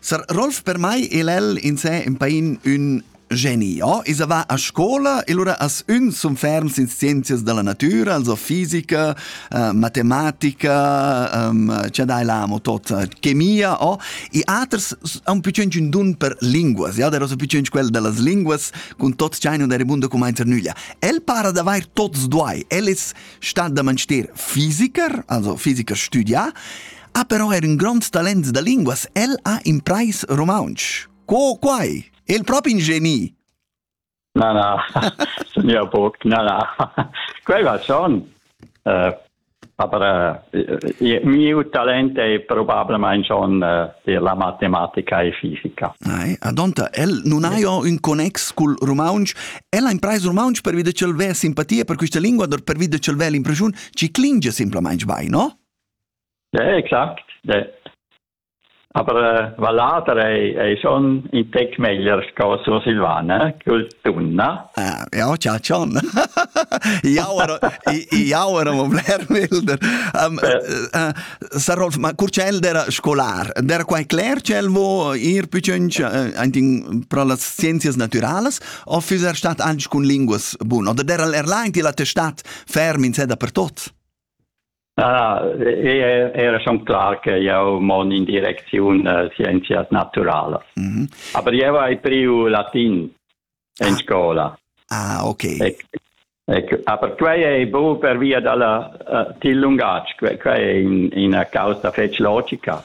Sar Rolf per mai e l'el in se in pain ün geni. Ja, esa va a scola e lura as ün sun ferms in scienzias della natura, also fisica, uh, matematica, um, ce dai l'amo tot, chemia, oh. I aters han più cent un dun per linguas, ja, der so più cent quel dellas linguas, cun tot chaino der mundo comenzer nüglia. El para d'avair tots duai. El es stat da manster fisiker, also fisiker studia, ha però er in grond talent da linguas. El ha imprais romontsch. Co quai? El propi in geni! Na, na, signor Burg, na, na. Quai va schon. Uh, aber uh, mio talent è probabilmente schon uh, la matematica e fisica. Ai, adonta, el non ha jo un connex col romontsch, el ha imprais romontsch per vide cel ve simpatia per questa lingua, per vide cel ve l'impresione ci clinge simplamente vai, no? Eh, exact. Aber äh, Vallater ei, ei schon in tec meglier sco Sursilvana cul tunna. Eh, ja, tja, schon. Jauer, jauer am bler milder. Um, uh, Sar Rolf, ma curcel era scolar, era quai cler cel vo ir picciunch uh, pro las scienzias naturalas o füser stat anche cun linguas bun? Oder der al erlain ti la testat ferm in seda per tot? Ah, era schon klar che jau mon in direcziun uh, scienzias naturalas. Mm -hmm. Aber eu hai priu latin in scola. Ah, ok. Ec, ec, aber quei è bu per via dalla uh, til lungatg, quei è in, una causa fetch logica.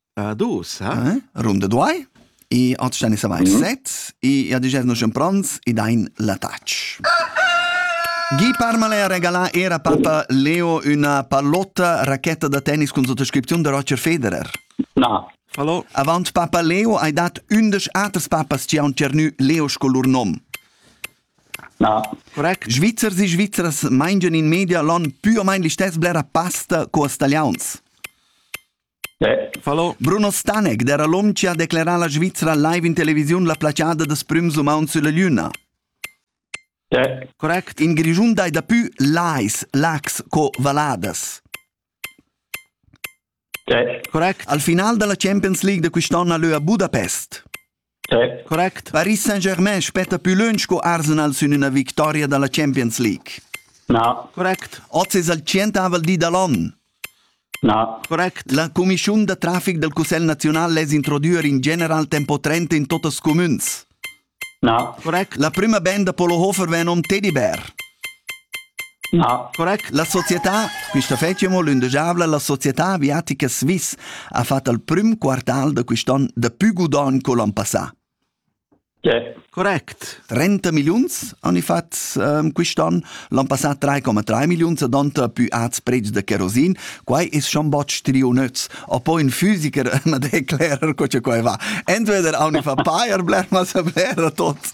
Ad ussa? Eh? Rum de duai. E als stanno savai set e a digesno schempranz e dain la touch. Guy Parmalè regala era papa Leo una pallotta racchetta da tennis con sottoscrizione da Roger Federer. No. Hallo. Avant papa Leo hai dat undisch aters papas ci han ternü Leo con lur nom. No. Correct. Svizzers e Svizzers mangian in media l'on più o meno gli stessi blera pasta co stagliauns. Falò Bruno Staneg d'eira l'hom chi ha declerà la Svizra live in televisiun la placiada da prüms umauns sülla Lüna. Correct. In Grischun dai dapü lais, lacs co valladas. Correct. Al final da la Champions League da quist'on ha lö a Budapest. Correct. Paris Saint-Germain spetta pü lönch co Arsenal sün üna victoria da la Champions League. Na. Correct. Oz es il tschientavel di da l'on. Na. Correct. La cumischiun da trafic dal Cussegl naziunal less introdüer in general tempo 30 in totas cumüns. Na. Correct. La prüma band da Polo Hofer vegn nom Teddy Bear. Correct. La società, quista fetscha amo lündegiavla, la società aviatica Swiss ha fat al prüm quartal da quist'on dapü gudogn co l'an passà. Correct. 30 milliuns han i fat ehm, quist'on, l'an passà 3,3 milliuns ed han pü ats preds da kerosin. Quai es-chan bod striu nöz. A po ün fisiker na declerer co cha quai va. Entweder haun i fa pair bler, ma saper a tots.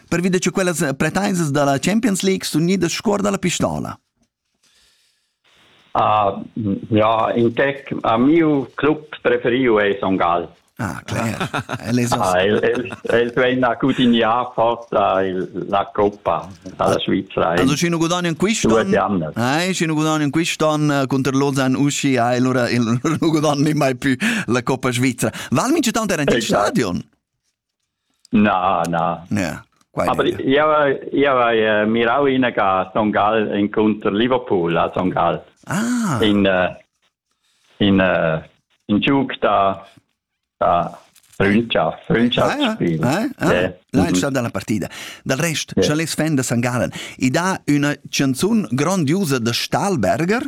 pervi da che quellas pretaisas da la Champions League sun gnidas scuor da la pistola. Uh, ja, in tec a miu club preferiu è Son Gall. Ah, clair. El es ah, el, el, el vegn a cudiniar forza il, la Coppa dalla Svizzera. Also scino guadagna in quist'anno. Eh, scino guadagna in quist'anno contro Lausanne usci, eh, allora il non guadagna mai più la Coppa Svizzera. Val mince tanto era in esatto. stadion? Na, na. Ja, Aber ich habe mirau in a Son Gall incontro Liverpool a Son Gall. Ah. In uh, in uh, in giug da da Freundschaft, Freundschaft ah, spiel. Ah, ah. Yeah. Lancia dalla partida. Dal rest, yeah. scha les fan da St. Gallen, i dà üna chanzun grondiusa da Stahlberger?